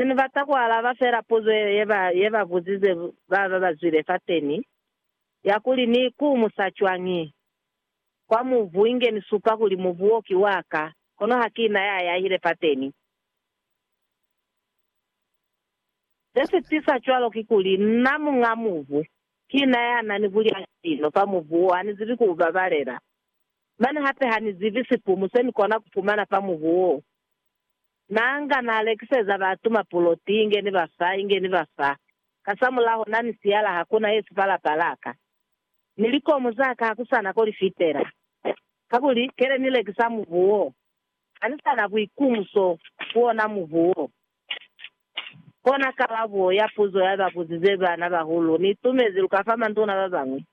Se ni bata ku alaba fela puzo ye ba, ye ba buzize ba ba ba zwile fateni, ya kuli, Ni ikumusa cwañi kwa mubu inge ni supa kuli mubu wo ki wa ka, kono ha ki na ya yahile fateni? Se si tisa cwalo kikuli, nna muña mubu, ki na ya na ni bulyali lino fa mubu wo, ha ni zibi ku u babalela. Mane hape ha ni zibi sipumu se ni kona ku fumana fa mubu wo. Nanga na lekiseza batu mapuloti inge ni ba fa, inge ni ba fa, kasamulaho na ni siyala hakuna ye sipa lapa laka, ni likomu zaka hakusana ko li fitela. Kakuli, kele ni lekisa mubu wo, hani sa na buikumuso ku ona mubu wo. Kona kalabo ya puzo ya ba buzize bana bahulu ni itumezi lu ka fa manduna ba bañwi.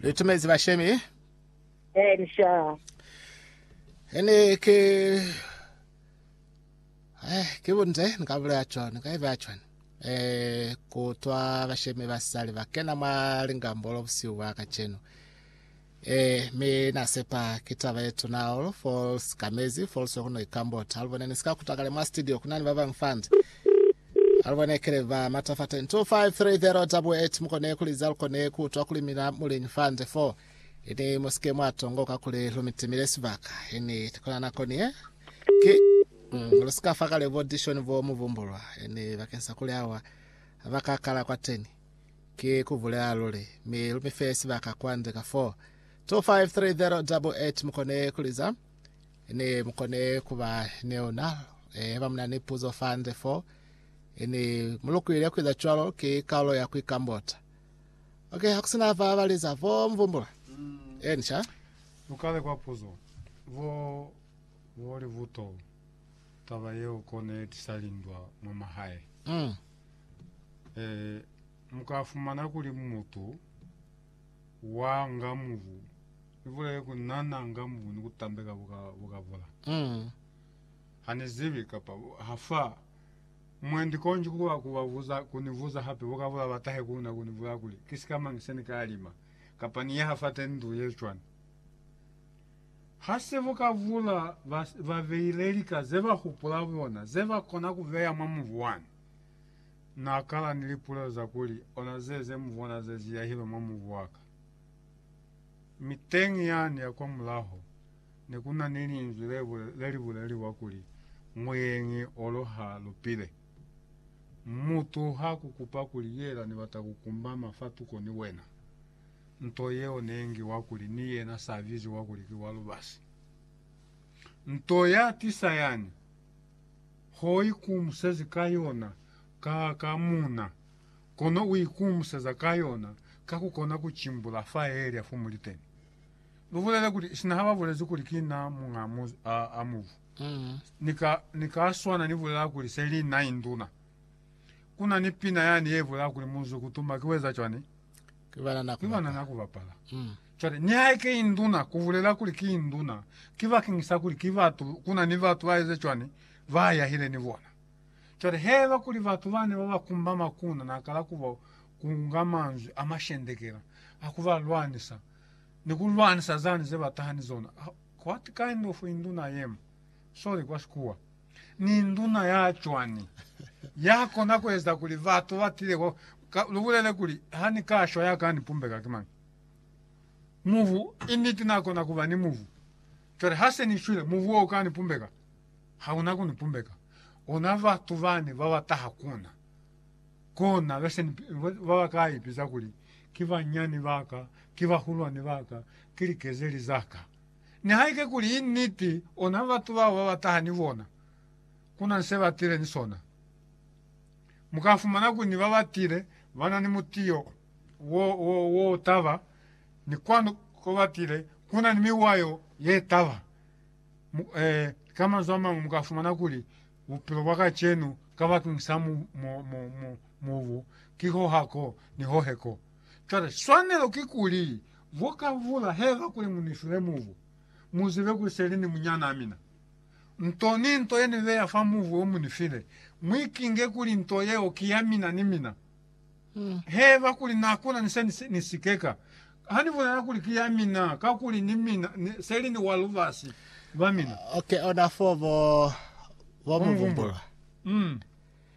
Ni tumezi bashemi. Eh ni shaa. Ene ke eh ke bunze ni ka bulela cho ni ka iba cho eh kutwa bashemi ba sali ba kena ma lingambolo busiu bwa kacheno eh me na sepa kitaba yetu na all for skamezi for so kuno ikambota alibone ni sika kutakale ma studio kuna ni baba mfanzi Aluba ne kile ba mata fa 10 2530 double eight mukone kuliza lukone kuutwa kuli mina muliñi fa nde fo ini musike mwa tongoka kuli lumitimile sibaka ini kuna nako nie ki mm, lusika fa kale bo dishoni bo mubumbulwa ini bakeng sa kuli awa ba ka kala kwa teni ki kubulela luli mi lumife sibaka kwa nde ka 4 2530 double eight mukone kuliza Ne mu kone kuba ni ona. E, haiba muna ni puzo fande fo, e, ni mu lukuile kuiza cwalo, ki kaulo ya kuikambota. Ok, hakusina ba baliza, bo mu vumbula. Eni, sha. Lukale kwa puzo. Bo, bo li buto, taba yeo ko ne tisa lindwa mwa mahae. Mm. E, muka fumana kuli mutu wa ngamubu ibulele kunana ngamubu ni kutambeka buka bukabula Mm. hanizibi kapa bu- hafa mwendi konji kuba kubabuza kunibuza hape bukabula batahe kuna kunibula kuli kisikamangi se nikalima kapa ni yaha fate ndu yecwani hase bukabula bas- babeile lika zebahupula bona zebakona kubeya mwa mubu wani Na kala ni lipulelo za kuli, Ona ze, ze mu bona ze ziyahilwe mwa mubu wa ka. Mi teñi yani ya kwa mulaho, ne ku na ni Linzwi le, le li buleliwa kuli, Muyeñi olo ha lupile. Mutu ha ku kupa kuli, Yela ni bata ku kumbama fa tuko ni wena. Nto yeo ne ngiwa kuli ni yena sa biziwa kuli ki wa lubasi. Nto ya tisa yani. Ho ikumusezi ka yona ka ka muna, kono u ikumuseza ka yona ka ku kona ku cimbula fa Elia fo muli teni. Lu bulele kuli, sina ha ba bulezi kuli ki na muñ'a muzi a, a mubu, ni ka, ni ka swana ni bulela kuli se li na induna. Ku na ni pina yani ye bulela kuli, Muzi ku tuma ki weza cwani? Ki banana ku bapala. Ki banana ku bapala. Mm. Cwale, nihaike ki induna, ku bulela kuli ki induna, ki bakeng sa kuli ki batu, ku na ni batu ba eze cwani, ba yahile ni bona. Cwale, haiba kuli batu bane ba ba kumba makuna na kala ku ba kunga manzwi a mashendekela a ku ba lwanisa, ni ku lwanisa zani ze ba taha ni zona, what kind of induna I am? Sorry, kwa Sikuwa. Ni nduna ya cwani ya kona ku eza kuli batu ba tile kwa ka, lu bulele kuli, Ha ni ka shwa ya ka ni pumbeka ki mañi? Mubu, i niti na kona ku ba ni mubu. Cwale ha se ni shwile, mubu wo u ka ni pumbeka? Ha una ku ni pumbeka. Ona batu bani ba ba taha ku na, kona be se ni, ba ba ka ipiza kuli, Ki banyani ba ka, ki bahulwani ba ka, ki likezeli za ka. Nihaike kuli i niti, ona batu bao ba ba taha ni bona, ku na ni se ba tile ni sona. Mu ka fumana kuli ni ba ba tile ba na ni mutiyo wo, wo, wo taba, ni kwanu ko ba tile ku na ni miwayo ye taba. Mu, eh, ka manzwi a mañwi, mu ka fumana kuli bupilo bwa kacenu kabakeñisa mu, mu, mu, mu, mubu ki ho ha ko ni ho he ko. Cwale, swanelo kikuli, bo ka vula, heza kuli mu ni file mubu, mu zibe kuli se li ni munyanaa mina. Nto ni nto ye ni beya fa mubu wo mu ni file, mu ikinge kuli nto yeo ki ya mina ni mina. Heza kuli na kuna ni se ni, ni sikeka. Ha ni bulela kuli ki ya mina, kakuli ni mina, ni, se li ni wa lubasi lwa mina. Okay, ona foo bo, bo mu vumbulwa. Mm.